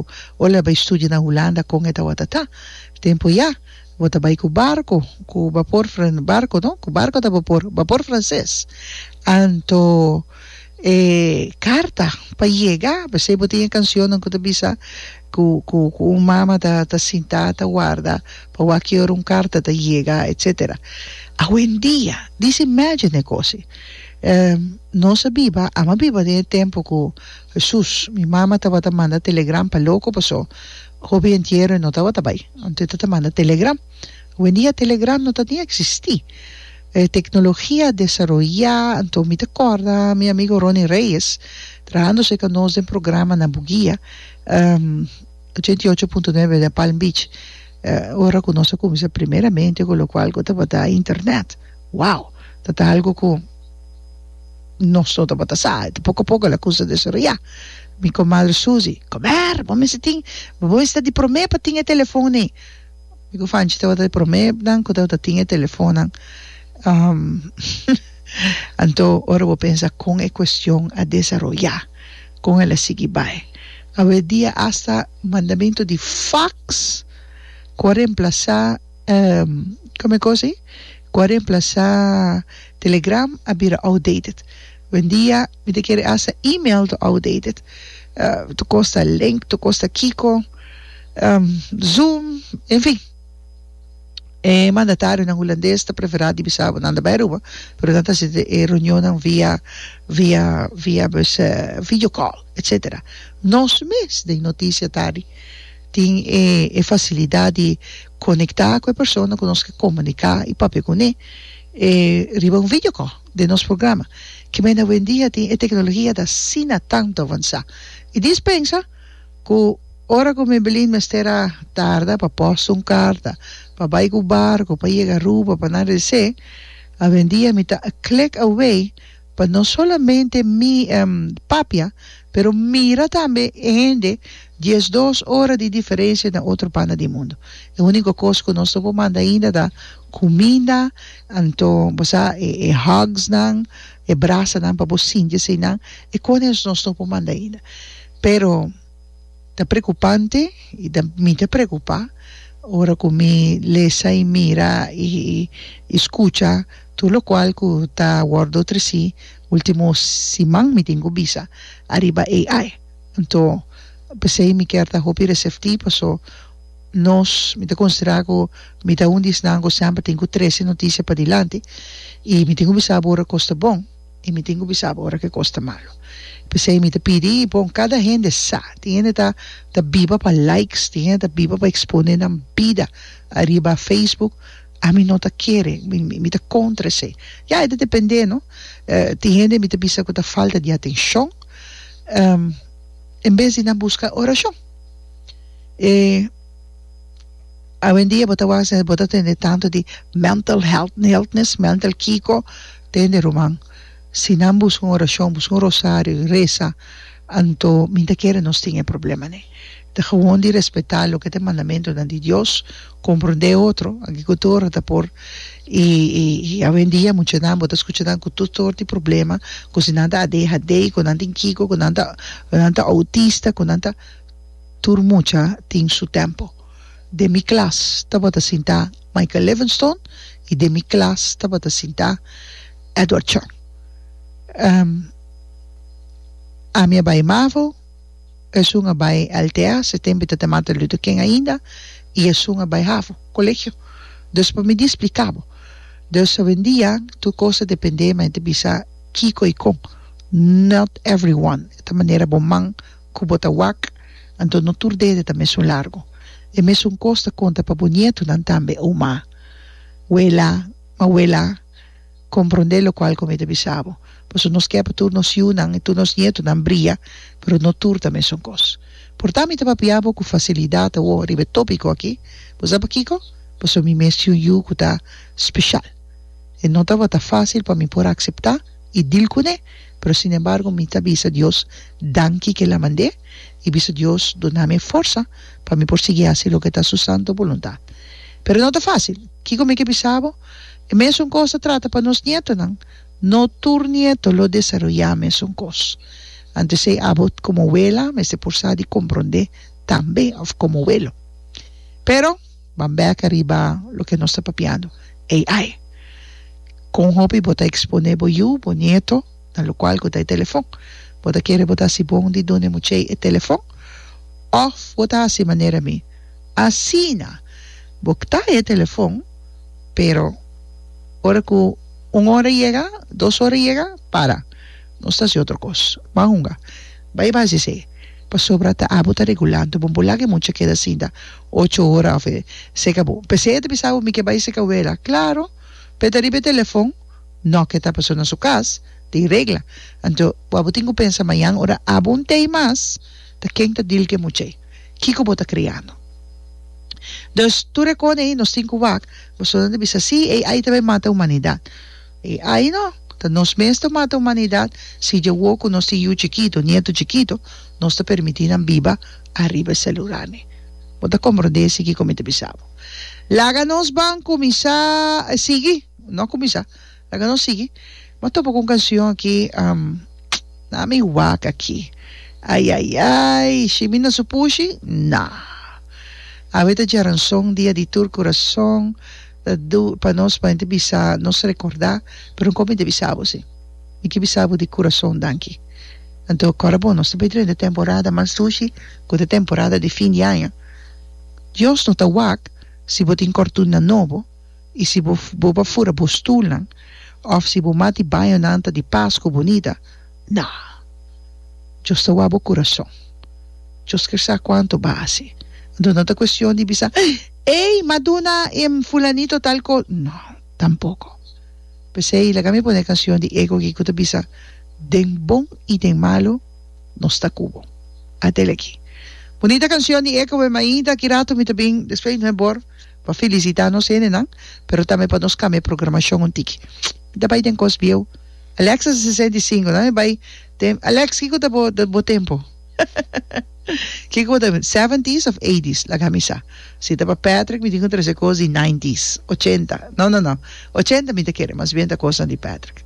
barco o leba e studio na Hulanda con e ta watatá tempo ya bo ta bai cu barco cu bapor fran barco no cu barco ta bapor bapor frances anto e carta pa yega pesey bo tin e cancionnan cu ta bisa cu cu cu un mama ta ta sintá ta warda pa wak ki ora un carta ta yega etcetera awendia this imagine e cosi nos a biba ama biba den e tempo cu Hesus, Mi mama tabata manda telegram pa loko paso hopi entiero e no tabata bai. Anto e ta ta manda telegram. Hoendia telegram no ta tin existi. E teknologia a desaroya anto mi ta korda mi amigo Ronnie Reyes trahando serka nos den programa na bugia ochenta i ocho punto nuebe de Palm Beach ora ku nos a kuminsa primeramente ku lokual ku tabata internet. Wow! Tabata algu ku. nos dos tabata sa y ta poco poco la cusa desoroya mi comadre Susi comer bo mester tin bo mester di prome pa tin e telefon ne mi cu Fanchi tabata di prome nan cu tabata tin e telefon nan anto ora bo pensa con e cuestion a desaroya con el a sigui bay awe dia asta mandamento di fax cu a remplasa Kome kos i? Ku a remplasá Telegram a bira outdated. Wendia, mi ta kere hasta email ta outdated. Ta kosta link, ta kosta kiko, Zoom, enfin. E mandatarionan hulandes ta preferá di bisa bo nan ta bai Aruba, pero nan ta hasi e reunionnan via, via, via, pues, videocall, etcetera. Nos mes den notisia ta di. Tin e e facilidad di conecta cu e persona cu nos ke comunica y papia cune e riba un video call den nos programa. Kimen awendia tin e tecnologia ta asina tanto avansa. Y dispensa cu ora cu Mebelin mester a tarda pa posta un carta, pa bay cu barco, pa yega Aruba, pa nan rece, awendia mi ta a click away. Pa no solamente mi papia, pero mira tambe e hende diesdos ora di diferensia na otro banda di mundo. E unico cos cu nos no por manda ainda ta cuminda, anto bo sa e hugs nan, e brasanan pa bo sinti asina, e cones nos no por manda ainda. Pero. Ta preocupante y ta mi ta preocupa ora cu mi lesa y mira y y scucha tur locual cu ta wordo treci ultimo siman mi tin cu bisa ariba AI anto pesey mi kier ta hopi recepti paso nos mi ta considera cu mi ta un di esnan cu semper tin cu trece noticia padilanti y mi tin cu bisa bo ora cos ta bon. I mi tin ku bisa bo ora ku e kos ta malu. P'esei mi ta pidi i pon kada hende sa. Tin hende ta ta biba pa likes, tin hende ta biba pa ekspone nan bida ariba Facebook. Ami no ta kere, mi mi mi ta kontra esei. Ya e ta depende no. Tin hende mi ta bisa ku ta falta di atenshon, en bes di nan buska orashon. E awendia bo ta wak bo ta tende tantu di mental health, healthness, mental kiko. Tende, ruman, si nan buska un orashon, buska un rosario i resa, anto mi ta kere nos tin e problema ne. Ta gewoon di respetá loke ta e mandamentunan di Dios, komprondé e otro. Aki ku tur ora ta por, i i awendia muchanan bo ta skucha nan ku tur sort di problema, ku si nan ta adhd, ku nan tin kiko, ku nan ta ku nan ta outista, ku nan ta. Tur mucha tin su tempo. Den mi klas tabata sintá. Michael Livingston y den mi klas tabata sinta Edward Chong. Ami a bay Mavo, esun a bay LTA, se tempo ta te Martin Luther King ainda, y esun a bay Havo, colegio. Dus pa mi di splica bo. Dus hoendia tur cos ta depende, mi ta bisa kico y con. Not everyone ta manera bo man. ku bo ta wak, anto no tur dede ta mesun largu. E mesun kos ta konta pa bo nietunan tambe, Ouma, Wela, Mawela, komprondé lokual ku mi ta bisa bo, paso nos ke pa tur nos yunan i tur nos nietunan bria, pero no tur ta mesun kos. Por ta mi ta papia bo ku fasilidat awor riba e tópiko aki, bo sa pakiko? Paso mi mes tin un yu ku ta speshal. E no tabata fásil pa mi por akseptá i dil kuné. pero sin embargo mi ta bisa Dios danki ke el a mand'é i bisa Dios dunami e forsa pa mi por sigui hasi loke ta su santu boluntad. Pero no ta fásil. Kiko mi ke bisa bo? E mesun kos ta trata pa nos nietonan. No tur nieto lo desaroyá mesun kos. Anto esei abo komo wela mester por sa di komprondé tambe òf komo welo. Pero. Ban bèka riba loke nos ta papiando, AI. Kon hopi bo ta eksponé bo yu, bo nieto, na lokual ku ta e telefon? Bo ta kere bo ta hasi bon di duna e muchei e telefon? Òf bo ta hasi manera mi? Asina bo ta e telefon, pero ora ku un ora yega, dos ora yega, para. Nos ta hasi otro kos. Ban hunga. Bai bas di esei. Pasobra ta abo ta regulando bo. Bo laga e mucha keda asinta. Ocho ora of e seka bo. P'esei e ta bisa bo, mi ke bai seka wela. Klaro, p'e ta riba e telefòn, nò ke ta pasó na su kas, tin regla. Anto, bo abo tin ku pensa, Mañan ora abo un tei mas, ta ken ta dil ke much'ei? Kiko bo ta kriando? Dus, tur e kona ei nos tin ku wak, bosonan ta bisa, Sí, ei ai ta bai mata humanidat. E ayno ta nos mes ta mata humanidad si dje wou cu nos tin yu chikito, nieto chikito, nos ta permiti nan biba ariba e celurarnan. Bo ta comprende asi kico mi ta bisa bo. Laga nos ban cuminsa sigui, no cuminsa, laga nos sigui. M'a topa cu un cancion aki, na mi wak aki, ayayay, shimi na su pushi, na. Awe ta djaranson dia di tur curason. Ta dur pa nos pa hende bisa nos rekordá, pero nko mi ta bisa bo si, mi ke bisa bo di kurason danki. Anto kòrda bon, nos ta bai dren di e temporada mas dushi ku ta temporada di fin di aña. Dios no ta wak si bo tin kòrtunnan nobo i si bo bo ba fura bo stulnan òf si bo mati bañonan ta di pas ku bunita. Na. Djos ta wak bo kurason. Djos kier sa kuantu bo a hasi. Anto no ta kuestion di bisa, Ey, m'a duna e fulanito tal kos. No, tampoko. P'esei laga mi pone e kansion di Ego aki ku ta bisa, Den bon i den malu, nos ta ku bo. Atel aki. Bunita kansion di Ego e mainta ki ratu mi ta bin despues no e bor pa felisita nos hendenan, pero tambe pa nos kambia e programashon un tiki. Mi ta bai den kos bieu. Alex a sesenta i sinku, nan e bai tem Alex kiko ta bo bo tempu kiko bo ta seventies of eighties laga mi sa si ta pa Patrick mi tin ku trese kos di nineties ochenta no no no ochenta mi ta kere mas bien ta kosnan di Patrick.